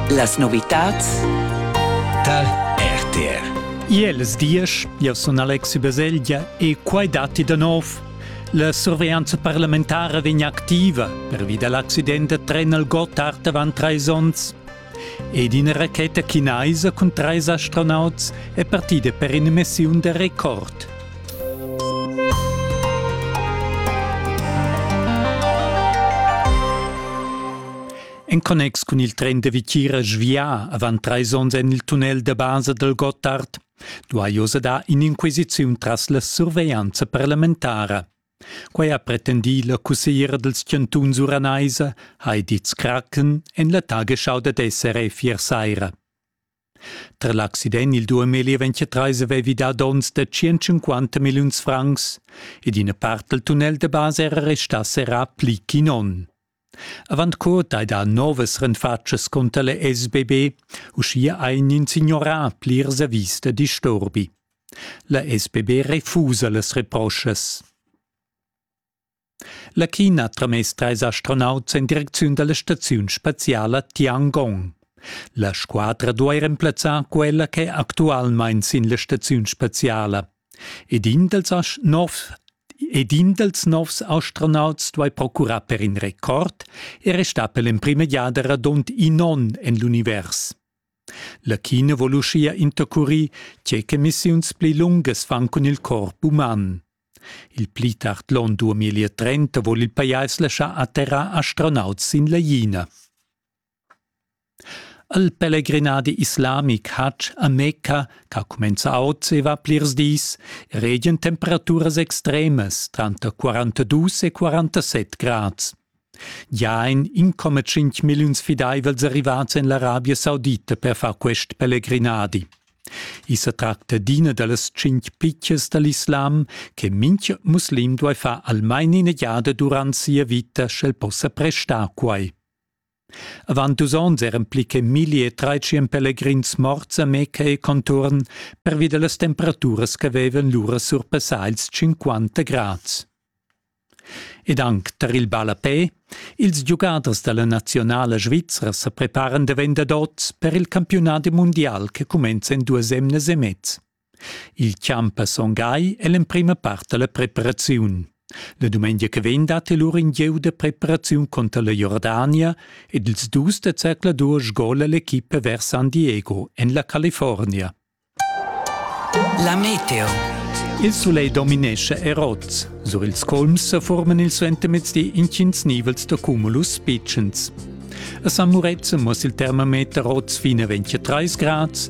Las novitads tar RTR. Iels diesch, io sun Alexi Baselgia e quai datti da nov. La surveglianza parlamentara vegn activa pervi da l'accident da tren al Gotthard avant trais onns. Ed ina racheta chinaisa cun trais astronauts è partida per ina missiun da record. En connex cun il tren da Vitgira svià avant trais onns en il tunnel da basa dal Gottard duai oz dar in'inquisiziun tras la surveglianza parlamentara. Quai ha pretendì la cussegliera dals chantuns uranaisa Heidi Zkraken en la Tagesschau dad SRF ier saira. Tra l'accident il duemili ventratreis avevi dà donns da 150 milliuns francs ed ina part dal tunnel da basa era restà serrà pli ch'in onn. Avant co dai dar novas renfatschas cunter la SBB, uschia ha in signorà plirs avis da disturbi. La SBB refusa las reproschas. La China ha tramess trais astronauts en direcziun da la staziun spaziala Tiangong. La squadra duai remplazzar quella ch'è actualmain sin la staziun spaziala. ed in dals novs ed in dals novs astronauts duai procurar per in record e restar per l'emprima giada radund in onn en l'univers. La China vul uschia intercurir tge ch'emissiuns pli lungas fan cun il corp uman. Il pli tard l'onn 2030 vul il pajais laschar atterrar astronauts sin la China. El pelegrinadi islamic Hajj a Mecca, ch'ha cumenzà oz e va plirs dis, regien temperaturas extremas tranter 42 e 47 grads. Gia ein 1,5 milliuns fideivels arrivats en l'Arabia Saudita per far quest pelegrinadi. I sa tracta d'ina da las tschintg pitschas dall'islam che mintga muslim duai far almain ina giada durant sia vita, sch'el possa prestar quai. Avant dus onns eran pli che milli e tratschien pelegrins morts a Meca e contuorn pervi dallas temperaturas ch'havevan lura surpassà ils 50 grads. Ed anc tar il ballapè, ils giugaders dalla nazionala svizra sa preparan davent dad oz per il campiunadi mundial che cumenza en duas emnas e mez. Il champ a Son Gai è l'emprima part da la preparaziun. La dumengia che vegn dat el lur in gieu da preparaziun conter la Jordania ed ils dus da zercladur sgola l'equipa vers San Diego en la California. La meteo. Il sulegl dominescha erots. Sur ils colms sa forman il suentermezdi intgins nivels da cumulus pitschens. A San Murezzan muss il termometer rots fin a 23 grads,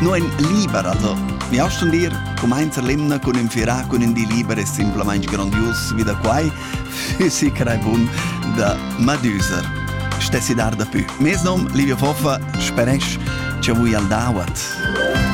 No ein libera da. Mi hast schon dir, cumainza l'emna cun ün firà cun ün di liber e simplamaing grandios vi da quai, füssi crei bun da Madüser. Stessi dar da pü. Mes nom, Livio Foffa, speresch che vui al dawat.